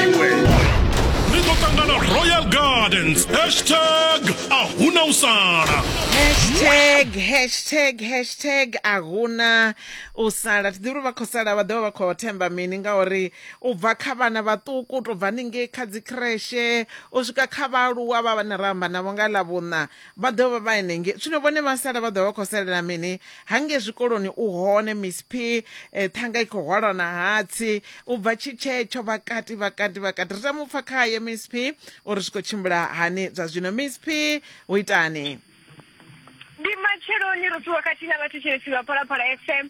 iwe ri ḓo ṱangana royal gardens hashtag a hu na u sala hashtag hashtag hashtag a hu na u sala thi ḓivhi uri vha khou sala vha ḓovha vha khou themba mini ngauri u bva kha vhana vhaṱuku u tou bva haningei kha dzi kreshe u swika kha vhaaluwa vha vhane ra amba navho nga ḽa vhuṋa Vha ḓo vha vha henengei. Zwino vhone vha sala vha ḓo vha vha khou salela mini? Hangei zwikoloni u hone Miss P, eh, ṱhanga i khou hwalwa na hatsi. U bva tshi tshetsho vha kati vha kati vha kati. Ri tama u pfa khaye Miss P uri zwi khou tshimbila hani zwa zwino. Miss P, hu itani? Ndi matsheloni ro ṱuwa khathihi na vhathu Tshilidzi vha Phalaphala FM.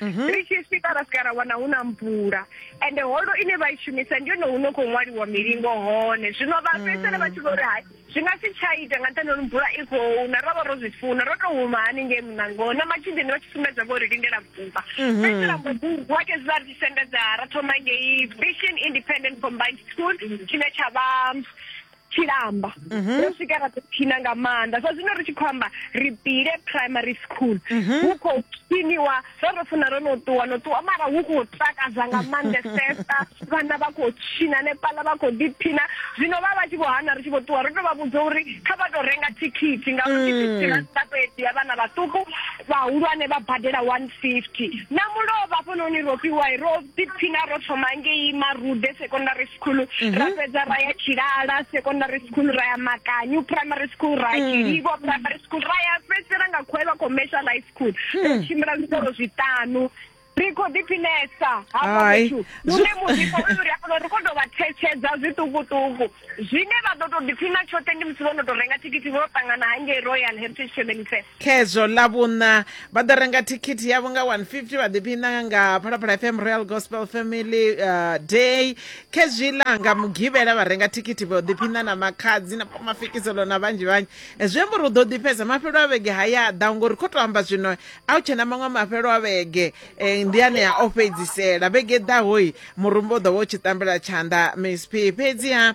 mhm. ri tshi swika ra swika ra wana hu na mvula ende holo ine vha i shumisa ndi yone huno khou ṅwaliwa milingo hone zwino vha mm. fhedzisele vha tshi vho ri hai zwi nga si tsha ita nga nṱhani uri mvula i khou na ro vha ro zwi funa ro tou huma haningei munangoni na matshideni vha tshi sumbedza vho ri lindela vumba mhm. fhedzi ra mbobugu ake zwi vha ri tshi sendedza ra thoma ngei vision independent combined school tshine tsha vha tshilamba mhm. ro swika ra ḓiphina nga maanḓa sa zwino ri tshi khou amba ri pile primary school mhm. hu khou phiniwa ro ro funa ro no ṱuwa no ṱuwa mara hu khou takadza nga maanḓesesa vhana vha khou tshina nepala vha khou ḓiphina zwino vha vha tshi vho hana ri tshi vho ṱuwa ro tou vha vhudza uri kha vha tou renga thikhithi ngauri mm. thikhithi ra sita to edziya vhana vhaṱuku vhahulwane vha badela one fifty na mulovha hafhanoni ro fhiwa ro ḓiphina ro thoma ngei marude secondary school mhm. ra fhedza ra ya tshilala secondary school ra ya makanyu primary school ra ya mm. tshilivo primary school ra ya fhedzisela nga khwevha commercial high school mm. ro tshimbila zwikolo zwiṱanu ri khou ḓiphinesa hafhaune muḓifho uyu ri a kona ri khou tou vha thetshedza zwiṱukuṱuku zwine vha ḓo tou ḓiphina tshoṱhe ndi musi vho no tou renga thikhithi vho ṱangana hangei royal heritage family fair khezwo ḽa vhuṋa vha ḓo renga thikhithi yavho nga 150 vha ḓiphina nga phalaphala fm royal gospel family uh, day khezwiḽa nga mugivhela vha renga thikhithi vha ḓiphina na makhadzi na mafikiselo na vhanzhi vhanzhi zwi amba uri u ḓo ḓifhedza mafhelo a vhege ha ya ḓa ngori kho to amba zwino a u tshe na maṅwe mafhelo a vhege eh, ndi anea o fhedzisela vhege ḓahoi murumba u ḓo vha u tshi tambela tshanḓa msp fhedziha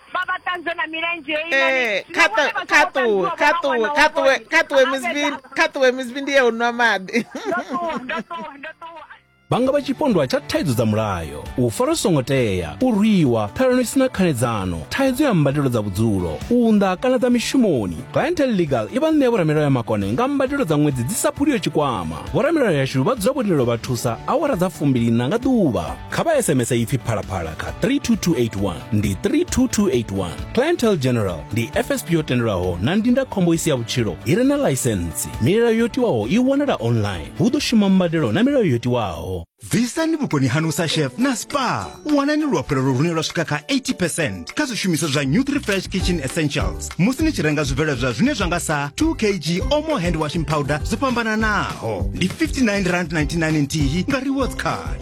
vha vha ṱanzwe na milenzhe ee kha ṱuwe kha ṱuwe kha ṱuwe kha ṱuwe misbi kha ṱuwe misbi ndi ye u nwa maḓi vha nga vha tshipondwa tsha thaidzo dza mulayo u fara songo tea u rwiwa ṱhalano isina khanedzano thaidzo ya mbadelo dza vhudzulo u unḓa kana dza mishumoni clientel legal i vha ṋea vhoramilayo ya makone nga mbadelo dza ṅwedzi dzi sa phuliyo tshikwama vhoramilayo yashu vha dzula vho lilo vha thusa awara dza fumbilina nga ḓuvha kha vha sms ipfi phalaphala kha 32281 ndi 32281 clientele general ndi fsp yo tendelwaho na ndindakhombo i si ya vhutshilo i re na ḽaisentsi milayo yo tiwaho i wanala online hu ḓo shuma mbadelo na milayo yo tiwaho bvisani vhukoni hanu sa chef na spa wanani luafhelo lune lwa swika kha 80 kha zwishumiswa zwa new 3 fresh kitchen essentials musi ni tshi renga zwibveledzwa zwine zwa nga sa 2 kg omo hand washing powder zwo fhambananaho ndi 59 rand 99 nthihi nga rewards card